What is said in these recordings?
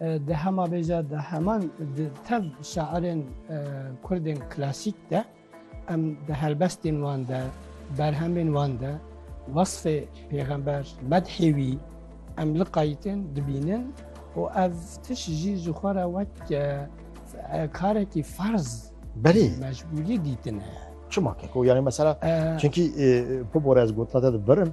Di hema vê jî de heman di tev şairên kurdên klasîk de em di helbestên wan de berhemên wan de wasfê pêxember medhê wî em li qayîtin dibînin û ev tiş jî ji xwe re wek karekî ferz berê mecbûrî dîtine. Çima keko yani mesela çünkü bu borez gotna te birin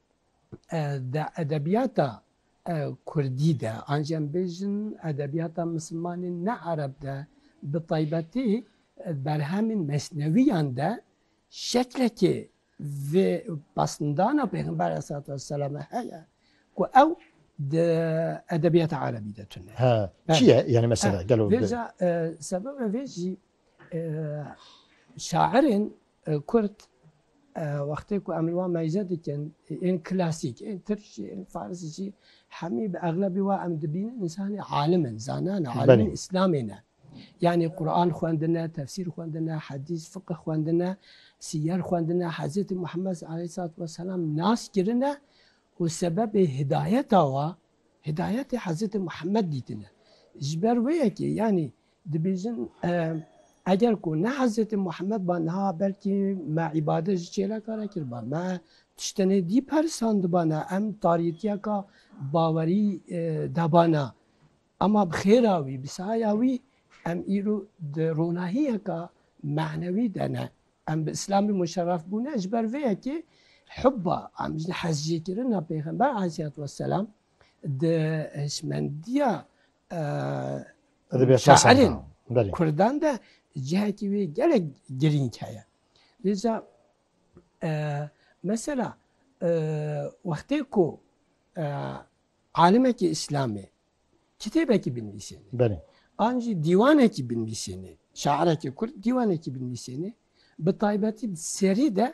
Di edebiyata kurdî de an jî em bêjin edebiyata misilmanên ne ereb de bi taybetî berhemên mesnewîyan de şeklekê vê pasndana Pêxember aleyhissalatu vesselame heye ku ew di edebiyata erebî de tune. He, çi ye? Yanî mesela gelo. Vêca sebeba vê jî Şairên kurd wextê ku em li wan meyze dikin ên klasîk ên tirk jî ên faris jî hemî bi exlebî wa em dibînin însanê alim in, zanan in, alimên îslamê ne. Yanî Quran xwendine, tefsîr xwendine, hedîs, fiqih xwendine, sîyer xwendine, Hezretî Muhemmed aleyhissalatu vesselam nas kirine û sebebê hidayeta wa hidayetê Hezretî Muhemmed dîtine. Ji ber wê yekê yanî Dibêjin eger ku ne Hezretê Muhammed ba niha belkî me îbadet ji çêlekare kiriba, me tiştenê dî perisandiba ne, em tariyetiyeka bawerî deba ne. Ema bi xêra wî, bi sahaya wî em îro di ronahiyeka manewî de ne. Em bi Îslamî muşerref bûne ji ber vê yekê hubba, em hezjêkirina Pêxember Aleyhisselatü Vesselam di hişmendiya şairên Kurdan de cihekî wî gelek girîng heye. Lîza mesela wextê ku alimekî îslamê kitêbekî binivîsêne an jî dîwanekî binivîsêne, şairekî Kurd dîwanekî binivîsêne bi taybetî di serî de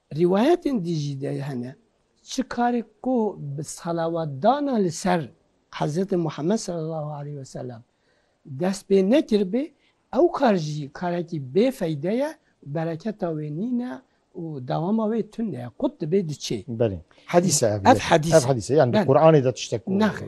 Rîwayetên din jî de hene çi karê ku bi salawatdana li ser Hezretê Muhammed sallallahu aleyh ve sellem dest pê nekiribê, ew kar jî karekî bê feyde ye, bereketa wê nîne û dewama wê tune ye, qut dibê diçê. Belê. Hedîs e ev. Ev hedîs e. Ev hedîs e. Yani di Quranê de tiştek ku. Nexir.